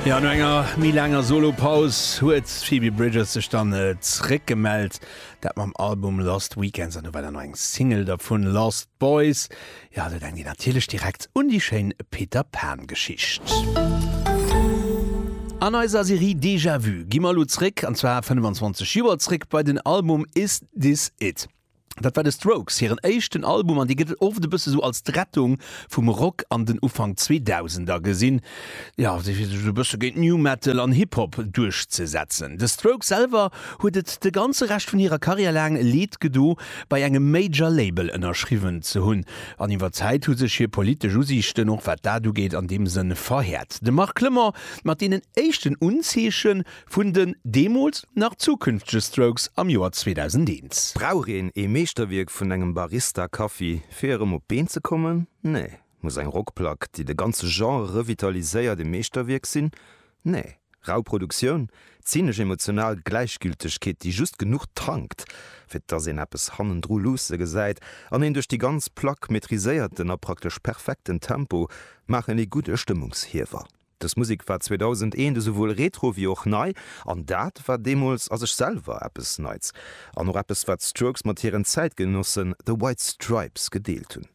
Ja, no enger méi laanger Solo-Paus huet d'Phoebe Bridgers sech dann äh, zréck gemellt. Dat mam Album Lost Weekends an ewell an eng Single dervun Lost Boys. Ja, do denkt Dir natierlech direkt un déi schéin Peter Pan-Geschicht. An eiser Serie Déjà-Vu gi mer elo zréck, an zwar 25 Joer zréck, bei den Album Is This It? Dat war de Strokes hiren éischten Album an dee gëtt oft e bësse sou als d'Rettung vum Rock an den Ufank Zweedausender gesinn, jo, fir sech esou e bësse géint New Metal an Hip Hop duerchzesetzen. De Strokes selwer huet et de ganze Rescht vun hirer Karriär laang leed gedo bei engem Major Label ënnerschriwwen ze hunn an iwwer d'Zäit hu sech hir politesch Usiichten, och wat dat ugeet, an deem Sënn verhäert. De Marc Clement mat deenen éischten Unzeeche Vun den deemools nach zukünftege Strokes am Joer 2001. Brauch een ee Meeschterwierk vun engem Barista Kaffi fir erëm op d'Been ze kommen? Nee. Muss eng Rockplack, déi de ganze Genre revitaliséiert, ee Meeschterwierk sinn? Nee. Rau Produktioun, zynesch emotional Gläichgültegkeet, déi just genuch tankt, fir dass een eppes hannendru luusse gesäit, an een duerch déi ganz Plack maîtriséierten a praktesch perfekten Tempo maachen ee gudde Stëmmungshiewer. Dës Musek war 2001 esouwuel retro wéi och nei, an dat war deemools a sech selwer eppes Neits, an och eppes wat d'Strokes mat hiren Zäitgenossen The White Stripes gedeelt hunn.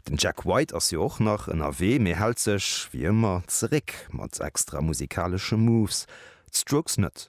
Den Jack White ass jo och nach ënnerwee, mee hält sech, wéi ëmmer, zeréck mat extra musikaleschen Moves, d'Strokes net.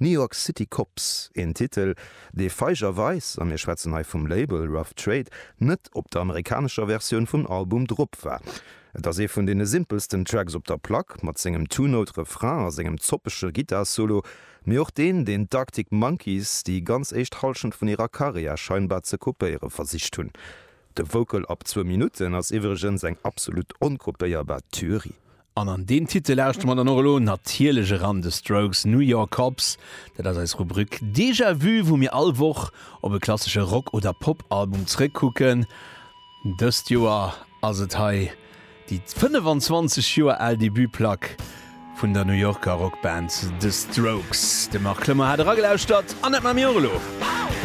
New York City Cops, een Titel, dee feigerweis, a mir schwätzen hei vum Label Rough Trade, net op der amerikanescher Versioun vum Album drop war. Et ass ee vun deene simpelsten Tracks op der Plack, mat sengem Two-Note-Refrain a sengem zoppege Gittar-Solo, mee och deen, deen d'Arctic Monkeys déi ganz éischt Hallschent vun hirer Karriär scheinbar ze kopéiere versicht hunn. De Vocal ab zwou Minutten ass iwwregens eng absolut onkopéierbar Tuerie. An an deem Titel lauschtere mer dann och elo natierlech eran The Strokes, New York Cops. Dat ass eis Rubrik Déjà Vu, wou mir all Woch op e klassesche Rock oder Pop-Album zréckkucken. Dëst Joer ass et hei déi 25 Joer al Debut-Plack vun der New Yorker Rockband The Strokes. De Marc Klemmer hat eragelauschtert an dat maache mir och elo.